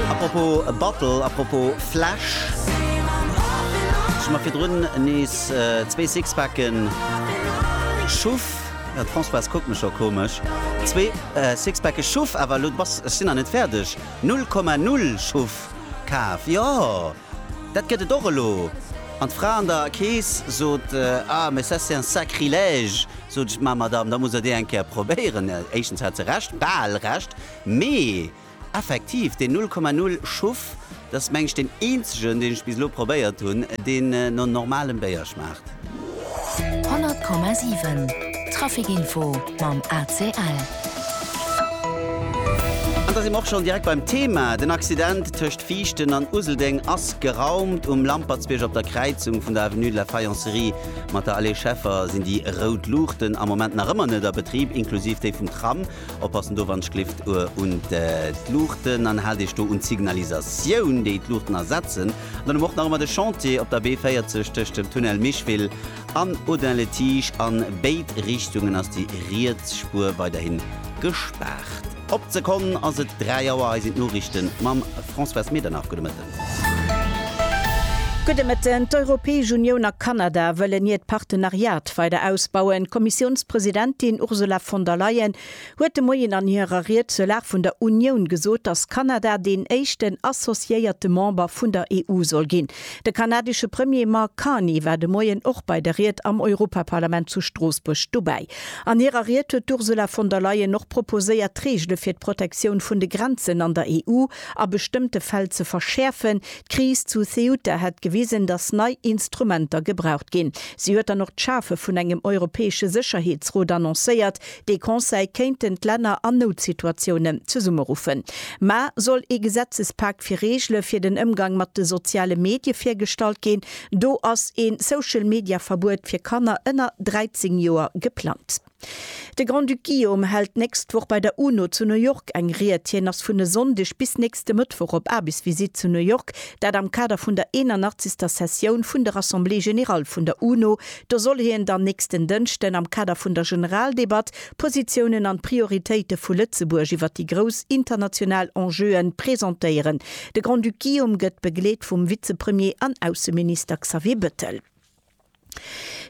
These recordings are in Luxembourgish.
A propos Battle, a propos Flash, ech hu mer virdrun nees zwee Sixpacken schuff. Jo, d'Françoise kuckt mech scho komesch. Zwee Sixpacke schuff, awer elo d'Bass, ech sinn nach net fäerdeg, 0,0 schuff kaf. Jo, dat gëtt et och elo. An d'Fra an der Kees sot, Ah, mais ça c'est un sacrilège! Sot ech, Ma Madame, da musst Der déi eng Kéier probéieren. Éischtens hat se Recht, bal Recht, mee. Effektiv, deen 0,0 Schuff, dass mengen ech deen eenzegen deen ech bis elo probéiert hunn, deen no normalem Béier schmaacht. 100,7 Trafic Info mam ACL. An da si mer och schonn direkt beim Thema. Den Accident tëscht Viichten an Useldeng ass geraumt. Um Lampertsbierg op der Kräizung vun der Avenue de la Faïencerie mat der Allée Scheffer sinn déi rout Luuchten am Moment nach ëmmer net a Betrib, inklusiv déi vum Tram. Oppassen do wann d'Schlift un d'Luuchten an haalt Iech do un d'Signalisatioun déi d'Luuchten ersetzen. An dann hu mer och nach ëmmer de Chantier op der B40 tëscht dem Tunnel Micheville an Audun-le-Tige. An béid Richtungen ass déi riets Spuer weiderhin gespaart. Op d'Sekonn ass et 3 Auer, hei sinn d'Noriichte mam Françoise Medernach. Gudde Mëtten. Gudde Mëtten. D'Europäesch Unioun a Kanada wëllen hiert Partenariat weider ausbauen. D'Kommissiounspresidentin Ursula von der Leyen huet de Moien an hirer Ried zur Lag vun der Unioun gesot, datt Kanada deen éischten associéierte Member vun der EU soll ginn. De kanadesche Premier Mark Carney war de Moien och bei der Ried am Europaparlament zu Stroossbuerg dobäi. An hirer Ried huet d'Ursula von der Leyen och proposéiert, d'Reegele fir d'Protektioun vun de Grenzen an der EU, a bestëmmte Fäll ze verschäerfen. D'Kris zu Ceuta hätt gewisen, datt nei Instrumenter gebraucht ginn. Si huet dann och d'Schafe vun engem europäesche Sécherheetsrot annoncéiert. Dee Conseil kéinten d'Länner an Noutsituatiounen zesummeruffen. Mä soll ee Gesetzespak fir Reegele fir den Ëmgang mat de soziale Medie virgestallt ginn? Do ass een Social-Media-Verbuet fir Kanner ënner 13 Joer geplangt. De Grand-Duc Guillaume hält d'nächst Woch bei der UNO zu New York eng Ried. Hien ass vun e Sonndeg bis nächste Mëttwoch op Aarbechtsvisitt zu New York, dat am Kader vun der 81. Sessioun vun der Assemblée générale vun der UNO. Do soll hien dann nächsten Dënschden am Kader vun der Generaldebatt d'Positiounen an d'Prioritéite vu Lëtzebuerg iwwer déi grouss international Enjeue presentéieren. De Grand-Duc Guillaume gëtt begleet vum Vizepremier an Ausseminister Xavier Bettel.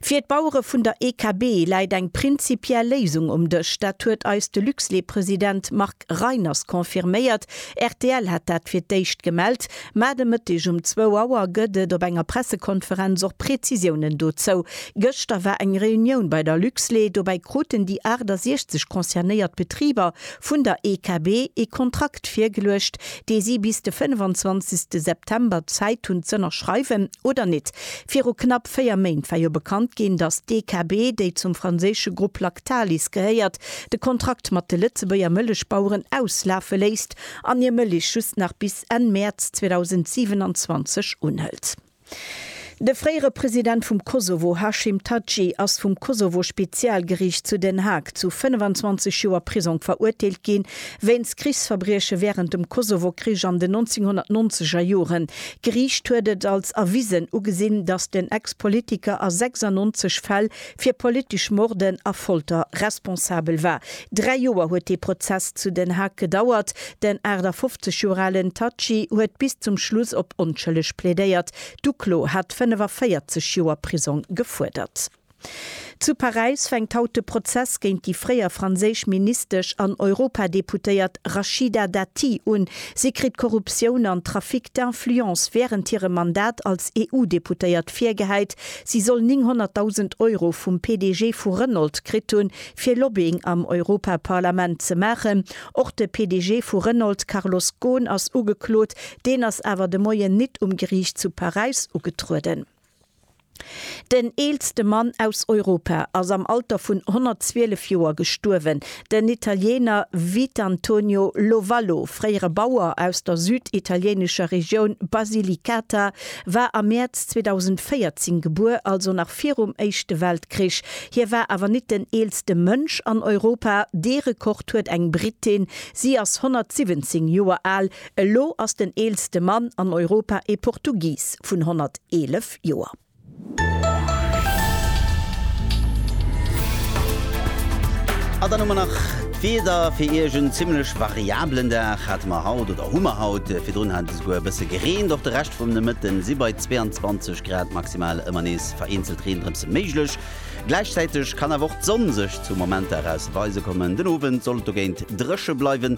Fir d'Bauere vun der EKB läit eng prinzipiell Léisung um Dësch. Dat huet eis de Luxlait-President Marc Reiners confirméiert. Rtl hat dat fir d'éischt gemellt, mä de Mëtteg um zwou Auer gëtt et op enger Pressekonferenz och Prezisiounen dozou. Gëschter war eng Reunioun bei der Luxlait. Dobäi kruten déi 68 concernéiert Betriber vun der EKB ee Kontrakt virgeluecht, dee si bis de 25. September Zäit hunn z'ënnerschreiwen oder net. Viru knapp véier Méint war jo bekannt ginn, datt d'EKB, déi zum franséische Grupp Lactalis gehéiert, de Kontrakt mat de Lëtzebuerger Mëllechbaueren auslafe léisst an hir Mëllech just nach bis Enn Mäerz 2027 unhëlt. De fréiere President vum Kosovo Hashim Thaçi ass vum Kosovo-Spezialgeriicht zu Den Haag zu 25 Joer Prisong verurteelt ginn, wéinst Krichsverbrieche wärend dem Kosovo-Krich an den 1990 er Joren. D'Geriicht huet et als erwisen ugesinn, datt den Ex-Politiker a 96 Fäll fir politesch Morden a Folter responsabel war. Dräi Joer huet dee Prozess zu Den Haag gedauert. Den 58 Joer alen Thaçi huet bis zum Schluss op onschëlleg plädéiert. D'Uklo hat 45 Joer Prisong gefuerdert. Zu Paräis fänkt haut de Prozess géint déi fréier franséisch Ministesch an Europadeputéiert Rachida Dati un. Si kritt Korruptioun an Trafic d'influence wärend hirem Mandat als EU-Deputéiert virgehäit. Si soll 900.000 Euro vum PDG vu Renault kritt hunn, fir Lobbying am Europaparlament ze maachen. Och de PDG vu Renault Carlos Ghosn ass ugeklot. Deen ass awer de Moien nit um Geriicht zu Paräis ugetrueden. Den eelste Mann aus Europa ass am Alter vun 112 Joer gestuerwen. Den Italiener Vitantonio Lovallo, fréiere Bauer aus der süditalienescher Regioun Basilicata, war am Mäerz 2014 gebuer, also nach virum Éischte Weltkrich. Hie war awer nit den eelste Mënsch an Europa, dee Rekord huet eng Brittin, si ass 117 Joer al. Elo ass den eelste Mann an Europa ee Portugis vun 111 Joer. An dann hu mer nach d'Wieder fir Iech. En zimmlech variablen Dag hate mer haut, oder hu mer haut. Virdrun hat et esouguer e bësse gereent. Och de Rescht vum Nomëtte si bei 22 Grad maximal ëmmer nees vereenzelt Reendrëpse méiglech. Gläichzäiteg kann awer och d'Sonn sech zu Momenter eraus weise kommen. Den Owend soll et dogéint dréche bleiwen.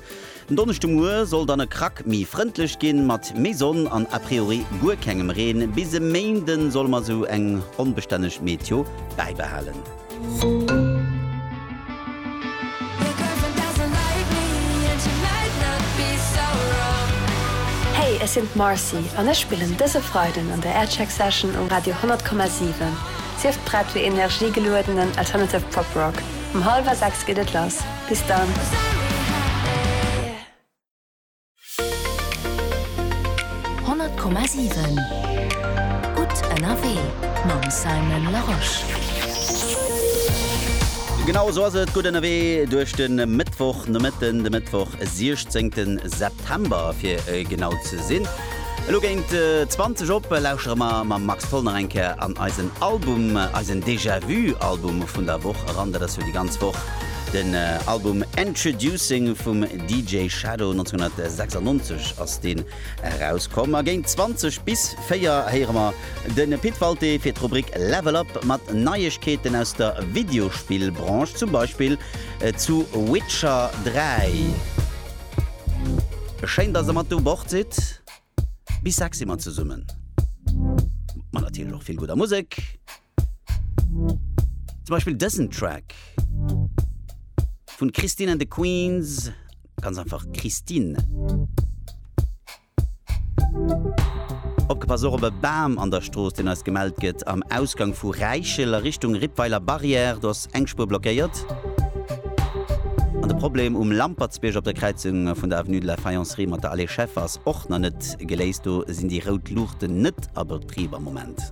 Den Donneschdemuer soll dann e Krack méi frëndlech ginn, mat méi Sonn an a priori guer kengem Reen. Bis e Méinde solle mer esou eng onbestänneg Meteo bäibehalen. Hey, ech sinn d'Marcy an ech spillen dëse Freiden an der Aircheck Session um Radio 100,7. Sief prett fir energie-geluedenen Alternative Pop Rock. Um hallwer 6 geet et lass. Bis dann. Honnert Komma siwen Gutt ënnerwee mam Simon Larosche. Genau esou ass et, gutt ënnerwee duerch de Mëttwochnomëtten, de Mëttwoch 16 September fir genau ze sinn. Elo géint 20 op lauschere mer mam Max Tholl nach eng Kéier an eisen Album, eisen Déjà-vu Album vun der Woch eran. Dat ass jo déi ganz Woch. Den Album Endtroducing vum DJ Shadow 1996 ass deen erauskomm a géint 20 bis 4 héiere mer de Pit Walté fir d'Rubrik Level Up mat Neiegkeeten aus der Videospill-Branche, zum Beispill zu Witcher 3. Schéin dass der mat u Bord sidd. Bis 6 si mer zesummen. Ma natierlech och vill gudder Musek. Zum Beispill dësen Track vun Christine and the Queens, ganz einfach Christine. Opgepasst, och op e Bam an der Strooss, deen eis gemellt gëtt am Ausgang vu Räichel a Richtung Rippweiler Barrière. Do ass eng Spuer blockéiert. An de Problem um Lampertsbierg op der Kräizung vun der Avenue de la Faïencerie mat der Allée Scheffer. Och nach net geléist, do sinn déi rout Luuchten net a Betrib am Moment.